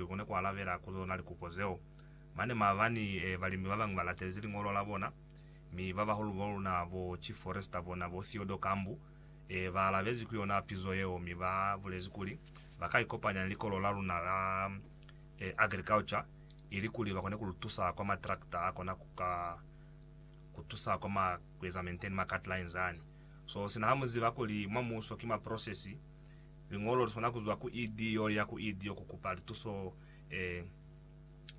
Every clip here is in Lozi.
Li kone ku alabela ku zona likupo zeo. Mane maabani, balimi ba bañwi ba latezi liñolo la bona, mi ba bahulu ba luna, bo Chief Forester bona, bo Theodore Kambu, ba alabezi ku yona pizo yeo mi ba bulezi kuli ba ka ikopanya ni Likolo la luna la Agriculture ilikuli ba kone ku lu tusa kwa ma tractor a kona ku ka ku tusa kwa ma, ku eza maintain ma cut lines ani. So sina ha mu ziba kuli mwa muuso ki ma process, Liñolo li swana ku zwa ku ED yo li ya ku ED yo ku kupa lituso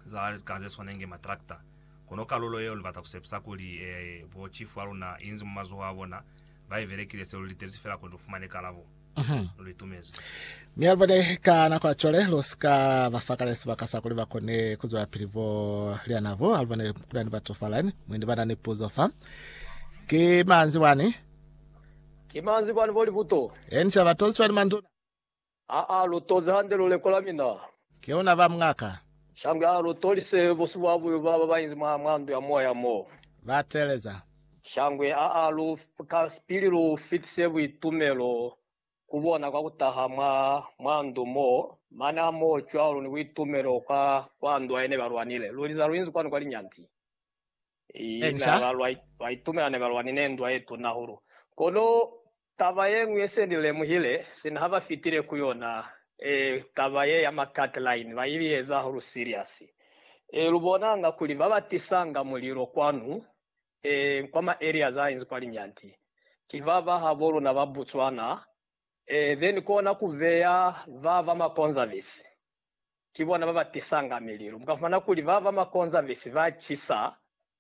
za lika ze swana inge matrakta. Kono kalulo yeo li bata ku sepisa kuli bo chifu ba luna i nzi mwa mazoho a bona, ba i belekile se lu litezi fela kuli lu fumane kalabo. Lu li tumezi. Mi ha lu bone ka nako ya cwale, lu si ka ba fa kale sibaka sa kuli ba kone ku zwelapili bo liana bo. Ha lu bone ku na ni batu fa line, mwendi ba na ni puzo fa. Ki manzi wani? Ki manzwi kwani bo libuto. Eni ca ba tozi cwani manduna. Aa lu tozi hande luleko la mina. Ke una ba mungaka. Shangwe aa lu tolise bo sibuabuyu baba ba inzi mwa mwa ndu ya moya mo. Ba teeleza. Shangwe aa lu ka pili lu fitise buitumelo ku bona kwa kutaha mwa mwa ndu mo. Mane a mo cwalo ni buitumelo kwa kwa ndu a ene ba lwanile. Lu liza lu inzi kwani kwa linyanti. Inca. Baitumela ne ba lwanine ndwa ye tuna hahulu. Kono taba ye ñwi ye se ni lemuhile, sina ha ba fitile ku yona, ee, taba ye ya ma cut line, ba ili eza hahulu serious. Ee, lu bonanga kuli ba ba tisanga mulilo kwanu, ee, kwa ma areas a inzi kwa Linyanti, ki ba ba ha bo luna ba Botswana, ee, then kona ku beya ba ba ma Conserves. ki bona ba ba tisanga mililu. Mu ka fumana kuli ba ba makonzavisi ba cisa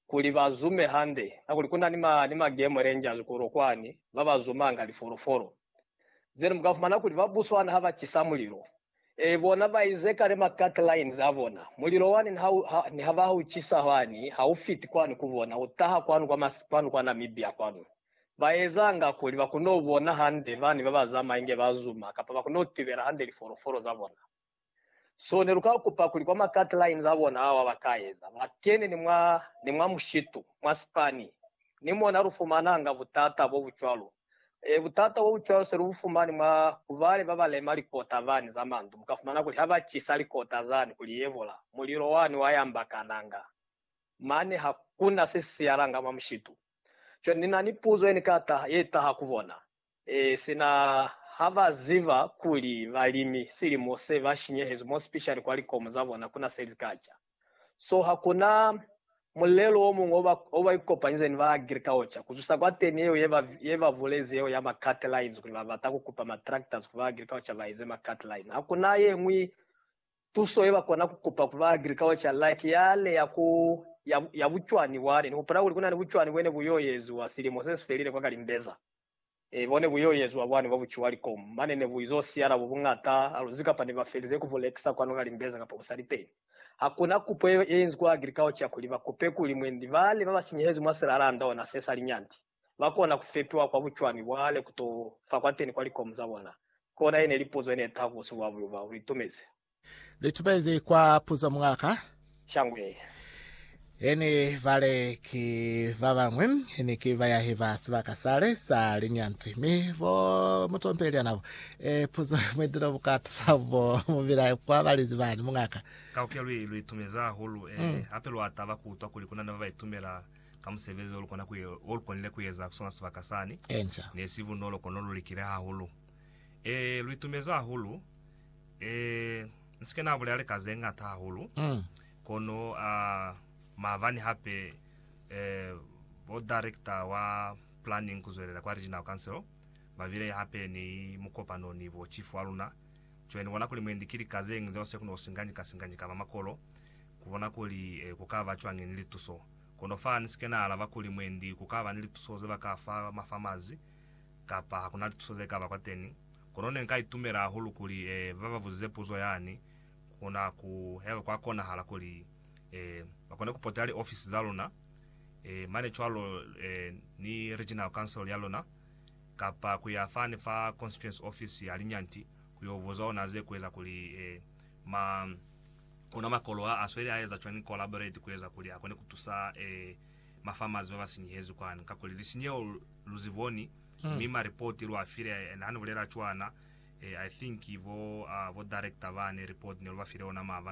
kuli ba zume hande, kakuli ku na ni ma, ni ma game rangers kulo kwani ba ba zumanga lifolofolo. Then mu ka fumana kuli ba Botswana ha ba cisa mulilo, eh, bona ba inze kale ma cut lines a bona. Mulilo wani ni ha u, ha, ni ha ba ha u cisa hwani, ha u fiti kwani ku bona, u taha kwanu kwa mas, kwanu kwa Namibia kwanu. Ba ezanga kuli ba kono bona hande bani ba ba zamaya inge ba zuma kapa ba kono tibela hande lifolofolo za bona. So ne lu ka kupa kuli kwa ma cut lines a bona ao a ba ka eza, ba kene ni mwa, ni mwa mushitu, mwa sipani. Ni mona lu fumananga butata bo bu cwalo. E, butata bo bu cwalo se lu bu fumani mwa ku bale ba ba lema likota bani za mandu. Mu ka fumana kuli ha ba cisa likota zani kuli yebola, mulilo wani wa yambakananga. Mane ha ku na se si siyalanga mwa mushitu. Cwale Ni na ni puzo ye Ni ka taha, ye taha ku bona. E, sina ha ba ziba kuli balimi silimo se ba shinyehezwi, more specially kwa likomo za bona, kuna se li ka ca. So hakuna mulelo o muñwi o ba, o ba ikopanyize ni ba agriculture, ku zwisa kwateni yeo ye ba, ye ba bulezi yeo ya ma cut lines, kuli ba bata ku kupa ma tractors ku ba agriculture ba eze ma cut line. Hakuna yeñwi Tuso ye ba kona ku kupa ku ba agriculture like ya ne ya ku ya, ya bucwani bwa ne. Ni hupula kuli ku na ni bucwani bwe ne bu y'o eziwa silimo se si felile kwa Kalimbeza. E, bo ne bu y'o eziwa bwani bwa buciwa likomu. Mane ne bu iz'o siya labo buñata aluzi kapa ne ba felize ku bu lekisa kwanu Kalimbeza kapa ku sa li teni. Ha ku na kupo ye, ye inzi kwa agriculture kuli ba kupe kuli mwendi bale ba ba sinyehezi mwa se la landa ona se sa linyanti. ba kona ku fetwa kwa bucwami bwa hale ku t'o fa kwateni kwa likomu za bona? Kona ye ne li puzo ye ne taha ku buso bwa buyo bwa buitumezi. Li tubezi kwa puzo mwa ka. Shango ye ye ni bale ki ba bañwi ni ki bayahi ba sibaka sale sa linyanti mi bo mutompeli ya nabo. E, puzo ye mwidile bu ka tusa bo mubila kwa balizi bani mwa ka. Ka ku ya lwi lu itumezi hahulu, e, hape lwa taba ku utwa kuli ku na ni ba ba itumela ka musebezi olukonile kueza kusona sibaka sani, nesi bunolo kono lulikile hahulu. Ee, luitumezi hahulu. Ee, nsike nabulela lika zeñata hahulu, kono a maabani hape ee, bo director wa planning kuzwelela kwa Regional Council babile hape ni mukopano ni bo chief waluna. Cwale nibona kuli mwendi ki lika zeñwi zeo sekuno singanyika singanyika ba makolo, kubona kuli ee, kukaba cwañi ni lituso. Kono fa ni si ke na alaba kuli mwendi ku ka ba ni lituso ze ba ka fa ma fa mazi, kapa ha ku na lituso ze ka ba kwateni, kono ne nka itumela hahulu kuli eh, ba ba buzize puzo yani, ku kona ku, haiba kwa konahala kuli eh, ba kone ku potela li ofisi za luna, eh, mane cwalo eh, ni Regional Council ya luna, kapa ku ya fani fa Constituency Office ya Linyanti ku yo buza ona ze ku eza kuli eh, ma. Ona makolo a a sweli a eza cwani kolaborate ku eza kuli a kone ku tusa ma farmers ba ba sinyehezwi kwani? Kakuli lisinyeho lu zi boni, mi ma report lu a file and ha ni bulela cwana, I think bo director bani report ne lu ba file ona maabani.